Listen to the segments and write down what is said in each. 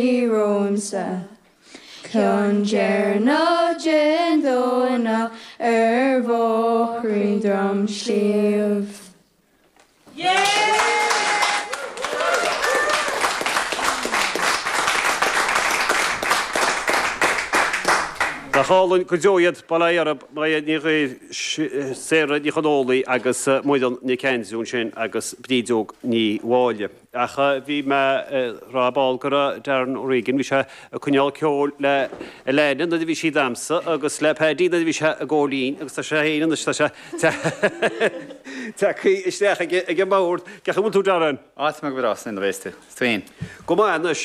Bí romhamsa. Ceann deireanach den Domhnach ar bhóithrín Dhroim Sliabh. Nach álainn go deo iad bail ó Dhia oraibh, Máire Ní Ghríofa, Sarah Ní Chonghaile agus Muireann Nic Aindriú ansin agus Bríd Óg Ní Mháille. Ach bhí mé ag rá ar ball go raibh Darren O'Regan, bhí sé ag coinneáil ceoil le Elaine nuair a bhí sí ag damhsa agus le Paddy nuair a bhí sé ag gabháil fhoinn agus tá sé féin anois, tá sé tagthaí isteach ag an mbord. Cén chaoi a bhfuil tú Darren? Á go maith go bhfuil tú, slán a bhéas tú, is tú féin. Go maith anois.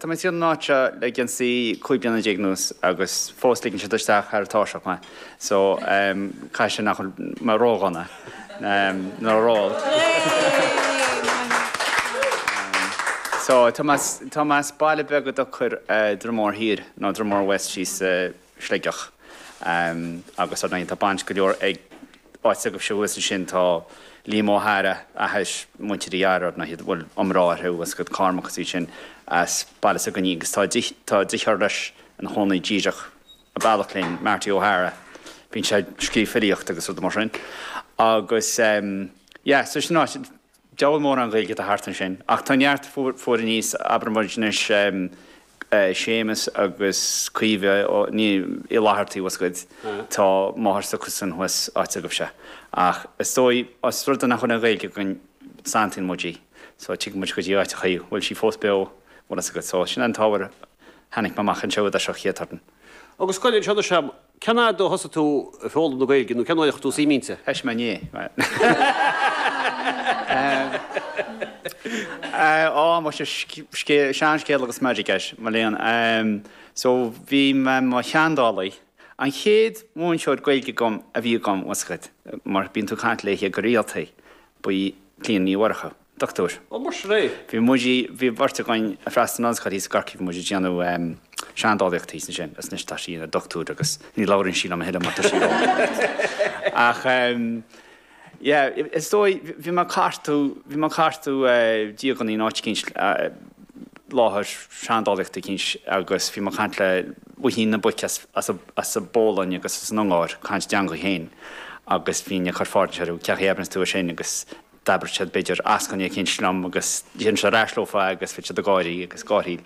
Tá mé tríd an áit seo le geansaí 15 bliana anuas agus fós ligeann siad isteach thar tairseach mé so caithfidh sé nach bhfuil mé ródhona nó ró-olc. Tá mé as baile beag a dtugtar Droim Mór Thiar nó Dromore West síos i. Sligeach. Agus ar ndóigh tá baint go leor ag áit s'agaibhse thuas ansin, tá Liam Ó hEadhra, athais muintir Uí Eadhra ar ndóigh, bhfuil iomrá orthu thuas Cormac is iad sin as baile sa Ghainín agus tá deartháir leis ina chónaí díreach a bealach linn, Marty Ó hEadhra, bíonn sé ag scríobh filíocht agus rudaí mar sin. Agus yeah, so sin áit, Diabhal mórán Gaeilge atá thart ansin. Ach tá neart fuar aníos, abraimid anois, Séamus agus Caoimhe Uí Fhlatharta, tá a fhios agat. Tá máthair s'acusan thuas áit agaibhse. Ach is dóigh, os rud é nach bhfuil an Ghaeilge againn, santaíonn muid í. So tig muid go dtí áiteachaí a bhfuil sí fós beo mar atá a fhios agat. So sin an t-ábhar a tháinig mé amach anseo i dtosach, chéad turn. Agus scoil anseo do Seam. Cén fhad ó thosaigh tú ag foghlaim na Gaeilge nó cén uair a chuir tú suim inti? Eist mé, ní hea. Á, mo scéal, seanscéal agus meirg air, mo léan. So, bhí mé i mo sheandálaí. An chéad mhúinteoir Gaeilge agam a bhí agam, tá a fhios agat, mar bíonn tú ag caint léithe go rialta, ba í Clíona Ní Mhurchú. Dochtúir. Ó, mar sin é? Bhí muid i, bhí beirt againn a' freastal ar an ollscoil thíos i gCorcaigh, bhí muid a' déanamh ehm, seandálaíocht thíos ansin is anois tá sí ina dochtúir agus ní labhraíonn sí liom a thuilleadh mar tá sí ó. Ach ehm, yeah, is dóigh, bhí mé a' cartadh, bhí mé a' cartadh eh, díogannaí in áit eicínt eh, láthair seandálaíochta eicínt agus bhí mé a' caint le Luichín na bPuic as, as a, as a' bPolainn agus as an Ungáir, caint a dteangaidh féin agus bhínn a' cuir fáilte orthu, céard a dhéananns tú ansin agus, D'abraíodh siad b'fhéidir eascainí eicínt liom agus deirinnse ar ais leofa agus bhí siad ag gáirí agus gáthaíl.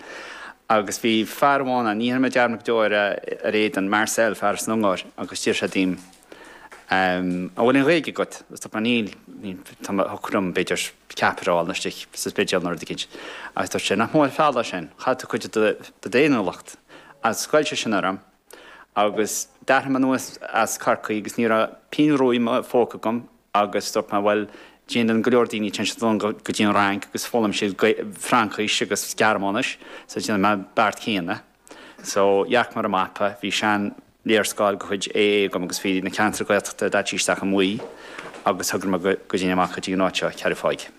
Agus bhí fear amháin ann, ní dhéanfaidh mé dearmad go deo ar a, ar a éadan, Marcel, fear as an Ungáir, agus d'iarr sé díom, An bhfuil aon Ghaeilge agat? Agus dúirt mé níl, níl, tá mé, thiocfadh liom b'fhéidir ceapaire a fháil nó istigh sa Spidéal nó rud eicínt. Agus dúirt sé, nach mór an feall é sin, chaill tú cuid de do, de do fhéiniúlacht. Agus ghoill sé sin orm. Agus d'athraigh mé anuas as Corcaigh agus ní raibh pingin rua i mo phóca agam agus dúirt mé bhuel déanann go leor daoine téann siad anonn go dtí an Fhrainc agus foghlaim siad Fraincis agus Gearmáinis so déanfaidh mé an beart céanna. So dhearc mé ar an mapa, bhí sean léarscáil de chuid AA agam agus bhí na ceantair Gaeltachta daite isteach i mbuí agus thograigh mé go dtéinn amach go dtí an áit seo, Ceathrú Thaidhg.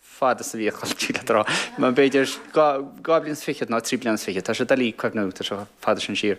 fad is a bhí a chos istigh le trá. B'fhéidir dhá bhliain is fichead nó trí bliana is fichead, tá sé doiligh cuimhneamh, tá sé chomh fada sin siar.